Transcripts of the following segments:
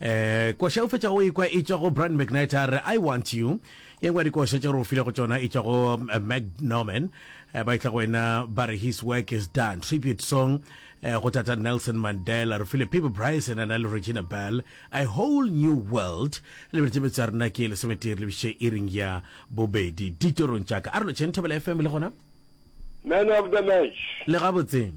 eh koša o fetša o ikwa e tšwa go brand mcnight a re i want you ye ngwe dikoša tše re o file go tšona e tšwa go eh, mac norman eh, ba itla go wena ba re his work is done tribute song eh, go tata nelson mandela re file pipe bryson a na le regina bell a whole new world lebeletse metso ya rena ke lesometee re lebiše e ring ya bobedi ditorong tšaka a re lotšheng thobela fm le gona man of the match le gabotseng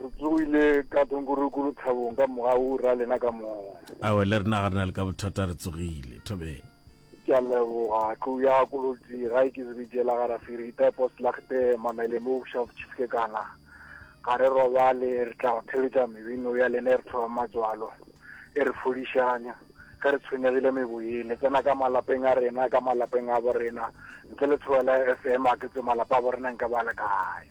Re tsogile ka thonkoroko lethabong ka moga o ra lena ka moya. Awe le rena ga rena le ka bothata re tsogile thobeng. Ke a leboga tlou ya kolotsi ga e ke zebedie la gara firita post lagte mamele mo busha botšhifke kana ga re robale re tla go theletša mebino ya lena e re thoba matswalo e re fodišanya ge re tshwenyegile meboye le tsena ka malapeng a rena ka malapeng a bo rena ntle le tshoba la fm a ke tse malapa a bo rena nka ba le kae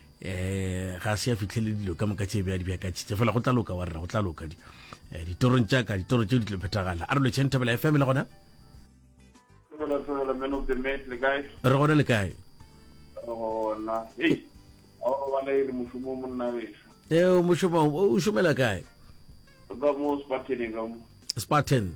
um ga se ya fitlhele dilo ka moka tšebe ya di bjakatšitse fela go tla loka wa rra go tla loka eh, ditorong tša ka ditoro tšeo di tlo phethagala a re lotšheng thabela fm le gona re gona le kae eo mošomo o šomela kae spartan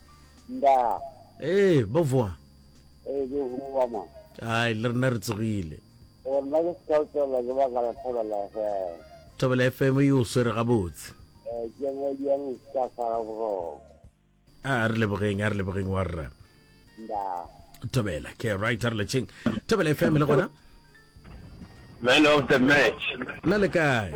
Ndaa. Ee, bovoa. Ee, ke bovoa ma. Ai, le rena re tsogile. Gore na ke seka o tswelela ke baka la Thobela FM. Thobela FM e o swere gabotse. Ee, ke yona e diang o seka sala boroko. A re lebogeng, a re lebogeng wa rra. Ndaa. Thobela, ke right, a re lecheng. Thobela FM le gona. Man of the match. Na le kae?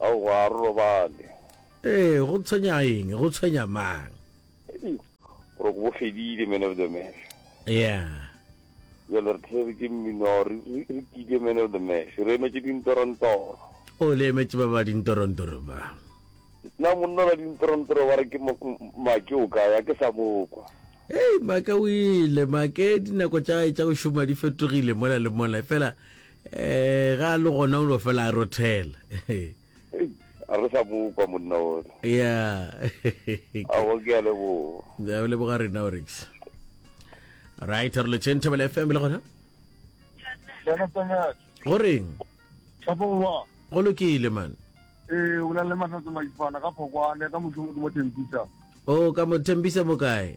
Aowa, a re robale. Ee, go tshwenya eng? Go tshwenya mang? Eish, gore ke bo fedile, man of the match. Yeah. Bjale re theetswe ke mmino, re, re, re kile man of the match. Re emetše dintorontoro. O le emetše ba ba dintorontoro ba. Na monna la dintorontoro ba re ke mo, m- Make o kae, a ke sa mo kwa. Hei, Make o ile, Make dinako tša gae tša go šoma di fetogile mola le mola, efela Eh, ga a le gona o no fela a rothela. Ei, a re sa bokwa monna ola. Yeah. A go ke a le bo. Da o le boga rena o rix. Right, re le chen thabela FM le gona. Bona tsena. Go reng? Thapo wa. Go lokile man. Eh, o la le matsa tsamaifana ka phokwane ka motho mo tembisa. Oh, ka mo tembisa mo kae?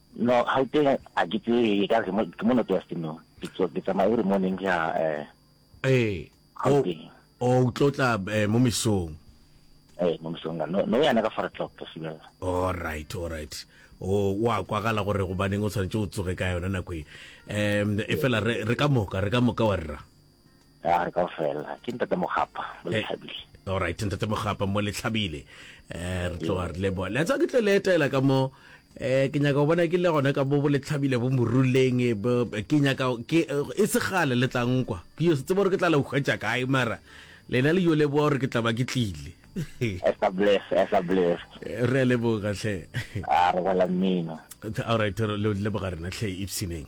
No, gauteng a ke tsebe e ka re ke mo northwest no ke tswa ke tsamaya every morning ke ya eh ee o gauteng o tlotla eh, mo mesong eh mo mosong ka no no yana ka four o'clock ka sibela alright alright o wa kwagala gore gobaneng o tshwanetse o tsoge ka yona nako e um e fela re re ka moka re ka moka wa rra a re ka fela ke ntate mogapa mo eh, letlhabile all right ntate mogapa mo letlhabile eh re tloga re leboa le tsa ke tle le etela ka mo eh ke nyaka go bona ke le gone ka bo boletlhabile bo moruleng eh, ke nyaka ke eh, e segale le tlang kwa ke yo se tsebo gore ke tla le hwetša kae mara lena le yo leboa gore ke tla ba ke tlile re leboga tlhe a re bala mmino all right leboga rena tlhe ipsineng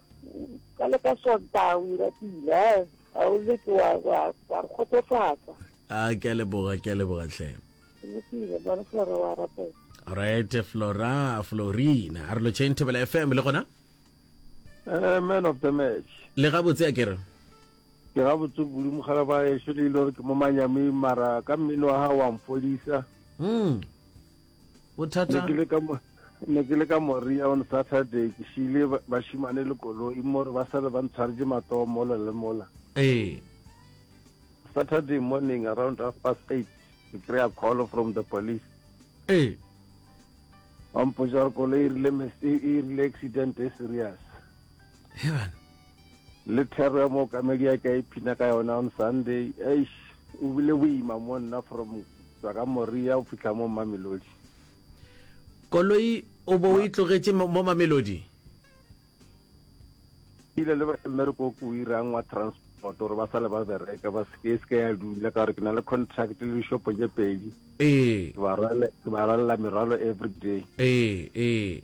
ka le ka sontaga o ira pila ga o leke wa re kgotsofatsa a ke a leboga ke a leboga tlhe lokile bone flora wa rapela right flora florina a re lo chain thobela fm le gona Eh, man of the match le gabotse a kere ke ga botse kudu mogala ba ešo le ile gore ke mo manyameng mara ka mmino wa gago wa mfodisa mm. bothata ne ke le ka moria on saturday ke šile bašimane le koloi mo re ba sale ba ntshwaretse matoo mola le mola ee saturday morning around half past eight ke kry-a call from the police ee ba mpotsa gore koloi e rile e rile accident e serious heaven Le thero ya mookamedi ya ke a iphina ka yona on Sunday. Eish, o bile boima mo nna from tswa ka Moria o fitlha mo Mamelodi. Koloi o bo o e tlogetše mo mo Mamelodi? Ke ile le ba mmereko o ke o irang wa transport gore ba sale ba bereka ba seke e seke ya dula ka gore ke na le contract le dishopo tše pedi. Ee. Ke ba rwale- ke ba rwalela merwalo everyday. Ee, ee.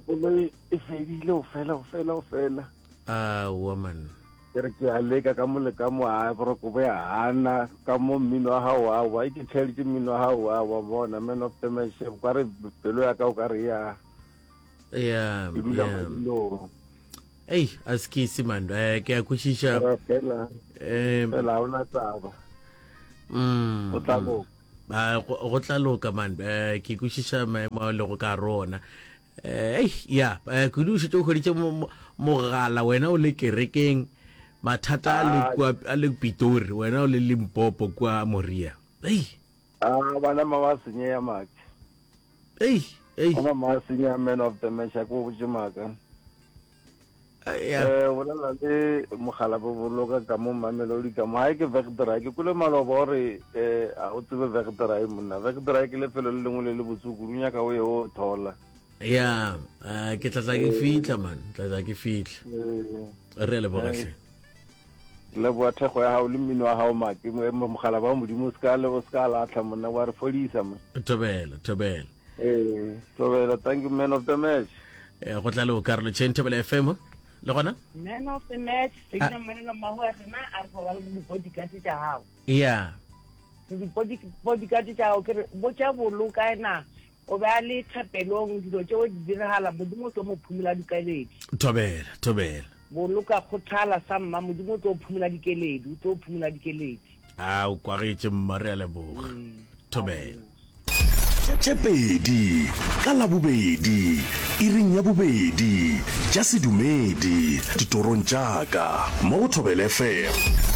koloi e fedile o fela o fela o fela a woman ke re ke a leka ka mole ka mo a boroko bo ya hana ka mo mmino wa gago wa wa ke tšheletse mmino wa gago wa wa bona man of the match ka re pelo ya ka o ka re ya ya ei a se ke ise man eh, ke a kwešiša fela eh, fela ga ona taba mm, o tla mm. Ba go tla loka man eh, ke kwešiša maemo a lego ka gare ona eh, ei ya eh, kudu o šetše o hweditše mogala wena o le kerekeng mathata a le kua a le pitori wena o le limpopo kua moria ei a ah, bana ma ba senyeya maki ei ei bana ma senyeya man of the match a ko botse maka ya eh bolela le mogala bo boloka ka mo mamelodi ka mo ha ke vekdra ke kule maloba gore eh a o tsebe vekdra e monna vekdra ke lefelo le lengwe le le botsukuru nyaka o ye o thola ya eh, ke tla tla ke fitla man tla tla ke fitla eh, re le bogahle le boa thego ya gago le mmino wa gago make mo- mogala ba modimo o se ka le- o se ka latlha monna wa re fodisa mo thobela thobela Ee, Thobela, thank you man of the match. Eh, go tla le o karolo chain table fm le gona Man of the match, se ke mmonela mmago ya rena a re go ba le dipodi ka tse tša gago. ya Dipodi dipodi ka tse tša gago ke re bo tša bolo ka ena o be a le thapelong dilo tšeo di diragala modimo o tlo mo phumola dikeledi. thobela thobela Boloka kgothala sa mma modimo o tlo phumola dikeledi, o tlo phumola dikeledi. a o kwagetše mma re a leboga thobela Tšepedi ka Labobedi iring ya bobedi tša sedumedi ditorong tša ka mo go Thobela FM.